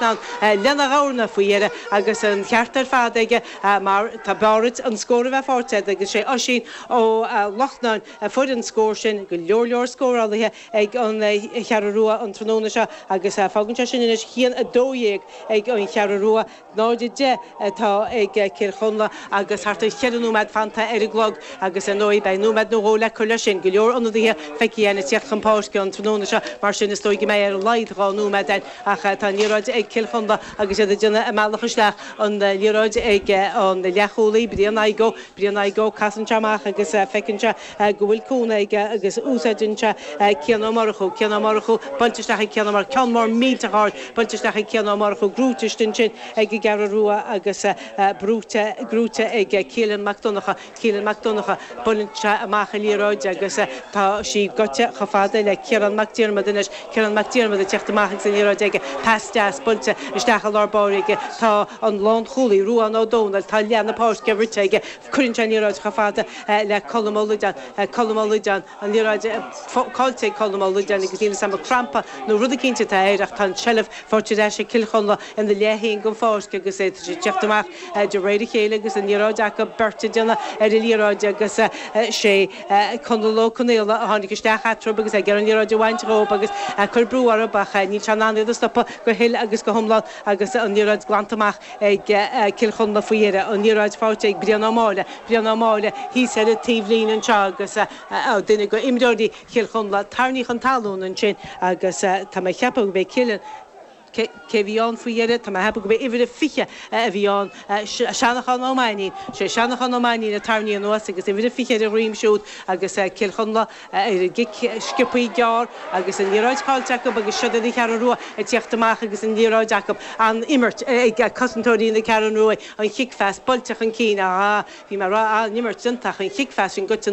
ann lena ghamhna faoi dheireadh agus an ceart ar fad aige mar tá b'fhearr dhuit an scór a bheith faighte agat agus sé Oisín Ó Lochnáin a fuair an scór sin. Go leor leor scórálaithe ag an Cheathrú Rua an tráthnóna seo agus fágann sé sin anois ceann, 12 ag an Cheathrú Rua, 0, 10 atá ag Cill Chonla agus thart ar cheithre nóiméad fanta ar an gclog agus ar ndóigh beidh nóiméad nó dhó le cur leis sin. Go leor ionadaithe feicthe againn ag tíocht chun páirce an tráthnóna seo mar sin is dóigh go mbeidh ar a laghad dhá nóiméad ann Ach tá an liathróid ag Cill Chonla agus iad ag déanamh a mbealach isteach. An liathróid ag an leathchúlaí, Brian Tadhg Ó. Brian Tadhg Ó, casann sé amach agus feiceann sé go bhfuil cúnamh aige agus úsáideann sé Cian Ó Murchú. Cian Ó Murchú, buailte isteach ag Cian Ó Murchú. Ceann mór millteach ard, buailte isteach ag Cian Ó Murchú. Gnóite istigh ansin ag an gCeathrú Rua agus gnóite ag Keelan Mac Donnacha. Keelan Mac Donnacha, buaileann sé amach an liathróid agus tá sí gaibhte chomh fada le Ciarán Mac Diarmada anois. Ciarán Mac Diarmada ag tíocht amach agus an liathróid aige. Pas deas buailte isteach i lár báire aige. Tá an lánchúlaí, Ruán Ó Domhnaill, tá leath na páirce rite aige. Cuireann sé an liathróid chomh fada le Colm Ó Loideáin. Colm Ó Loideáin. an liathróid caillte ag Colm Ó Loideáin agus níl 'fhios a'm an crampa nó rud eicínt atá air ach tá an tseilbh faighte ar ais ag Cill Chonla ina leath féin den pháirc agus tá siad ag teacht amach de réir a chéile agus an liathróid acu beirt ag déanamh ar an liathróid agus sé Conall Ó Conaola a tháinig isteach eatarthu agus é ag iarraidh an liathróid a bhaint dhób agus ag cur brú orthub ach níl sé in ann iad a stopadh go huile agus go hiomlán agus an liathróid glanta amach ag Cill Chonla faoi dheireadh, an liathróid faighte ag Brian Ó Máille, Brian Ó Máille thíos ar an taobh líne anseo agus duine go imreoirí Chill Chonla, tarraingíodh chun talún ansin agus tá mé ag ceapadh gurb é Killian, cé cé a bhí ann faoi dheireadh, tá mé ag ceapadh gurb é uimhir a 20 a bhí ann, Seanachán Ó Mainín, sé Seanachán Ó Mainín a tarraingíodh anuas agus uimhir a 20 ar a dhroim siúd agus Cill Chonla. a gcic sciopthaí gearr agus an liathróid caillte acu agus siod iad an Cheathrú Rua ag tíocht amach agus an liathróid acu, an-imirt ag cosantóirí na Ceathrún Ruaidh, an chicphas buailte chun cinn, ah, bhí an-imirt déanta ach an chicphas sin gaibhte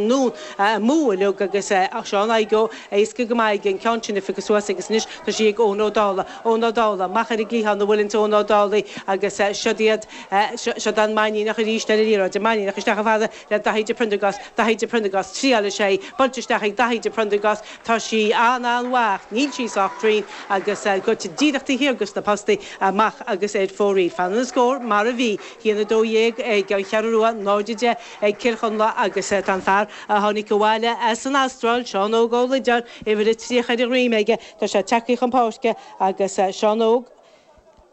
amú uilig agus Seán Agee Ó, éasca go maith aige an ceann sin a phiocadh suas agus anois tá sí ag Eoin Ó Dálaigh, Eoin Ó Dálaigh, amach ar an gcliathán, a bhuaileanns Eoin Ó Dálaigh agus siod iad, siod an Mainníneach arís ar an liathróid, an Mainníneach isteach chomh fada, le Daithí de Priondragás, Daithí de Priondragás, triáil is é buailte isteach ag Daithí de Priondragás, tá sí an-an-mhaith ach níl sí sách cruinn agus gaibhte díreach taobh thiar go sna postaí amach agus ar fóraoil. Fanann an scór mar a bhí, ceann 12 ag an Cheathrú Rua, 0, 10 ag Cill Chonla agus tá an fear a tháinig abhaile as an Astráil, Seán Óg Ó Loideáin, uimhir a 30 ar a dhroim aige. Tá sé ag teacht chun páirce agus Seán Óg.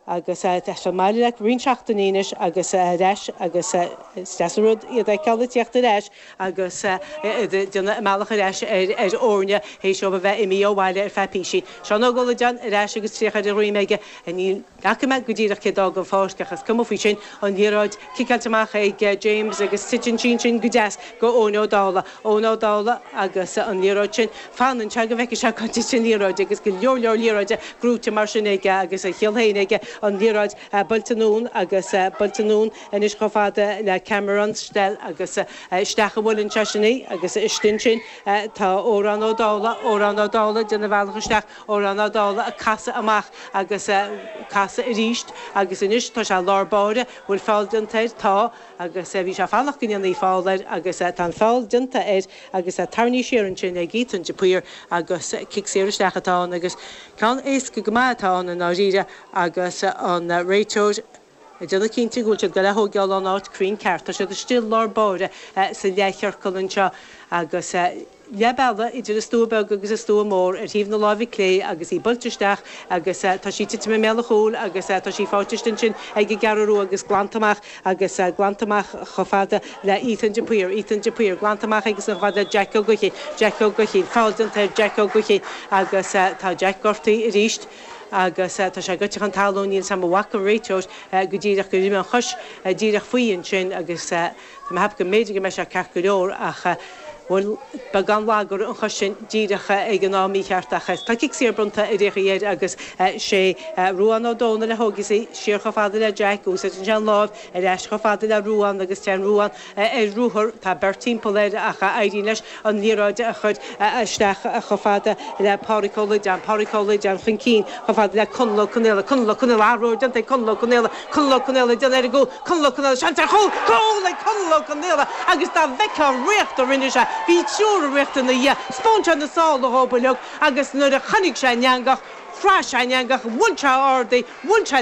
agus tá sé i mbaile le roinnt seachtainí anois agus ar ais agus is deas an rud iad a fheiceáil ag tíocht ar ais agus iad ag déanamh a mbealach ar ais ar fhoirne théis dóibh a bheith imí' ó bhaile ar feadh píosa. Seán Óg Ó Loideáin ar ais agus tríocha ar a dhroim aige. Ní fhaca mé go díreach cé d'fhág an pháirc ach is cuma faoi sin, an liathróid ciceáilte amach ag James agus titeann sí ansin go deas go Eoin Ó Dálaigh. Eoin Ó Dálaigh agus an liathróid sin, fanann sé go bhfeice sé cá dtitfidh an liathróid agus go leor leor liathróide gnóite mar sin aige agus a chiall féin aige an liathróid buailte anonn agus buailte anonn anois chomh fada le Cameron Strell agus isteach a bhuaileann sé sin í agus istigh ansin tá Odhrán Ó Dálaigh, Odhrán Ó Dálaigh ag déanamh a bhealach isteach, Odhrán Ó Dálaigh ag casadh amach agus ag casadh aríst agus anois tá sé i lár báire, bhfuil feall déanta air? Tá. agus bhí sé ag fanacht go ndéanfaí feall air agus tá an feall déanta air agus tarraingthe siar ansin ag Ethan de Paor agus cic saor isteach atá ann agus ceann éasca go maith atá ann i ndáiríre agus an réiteoir ag déanamh cinnte go bhfuil sé ag goil á thógáil ón áit cruinn ceart. Tá siad istigh i lár báire sa leathchiorcal anseo agus. leath bealaigh idir an stua beag agus an stua mór ar thaobh na láimhe clé agus í buailte isteach agus tá sí tite i mbéal an chúil agus tá sí faighte ansin ag an gCeathrú Rua agus glanta amach agus glanta amach chomh fada le Ethan de Paor, Ethan de Paor, glanta amach agus chomh fada le Jack Ó Guithín, Jack Ó Guithín, feall déanta ar Jack Ó Guithín agus tá Jack gortaithe arís agus tá sé gaibhte chun talún, níl a fhios agam an bhfaca an réiteoir go díreach gur imigh an chois díreach faoi ansin agus Tá mé ag ceapadh go mb'fhéidir go mbeidh sé ceart go leor ach an bhfuil beagán lag orthu an chois sin díreach ag an am mícheart ach tá cic saor bronnta ar aon chaoi air agus sé Ruadhán Ó Dónaill a thógfas í siar chomh fada le Jack, úsáideann sé an láimh, ar ais chomh fada le Ruadhán agus téann Ruadhán ar ruathar, tá beirt timpeall air ach éiríonn leis an liathróid a chur isteach chomh fada le Pádraig Ó Loideáin, Pádraig Ó Loideáin chun cinn, chomh fada le Conall Ó Conaola, Conall Ó Conaola, athrú, déanta ag Conall Ó Conaola, Conall Ó Conaola, ag déanamh ar an gcúl, Conall Ó Conaola, seans ar chúl, cúl ag Conall Ó Conaola agus dá bhfeictheá an ritheacht a rinne sé, bhí triúr ag ritheacht ina dhiaidh, spáin sé na sála dhóibh uilig agus nuair a chonaic sé an eangach, chraith sé an eangach, bhuail sé a ordaigh, bhuail sé le.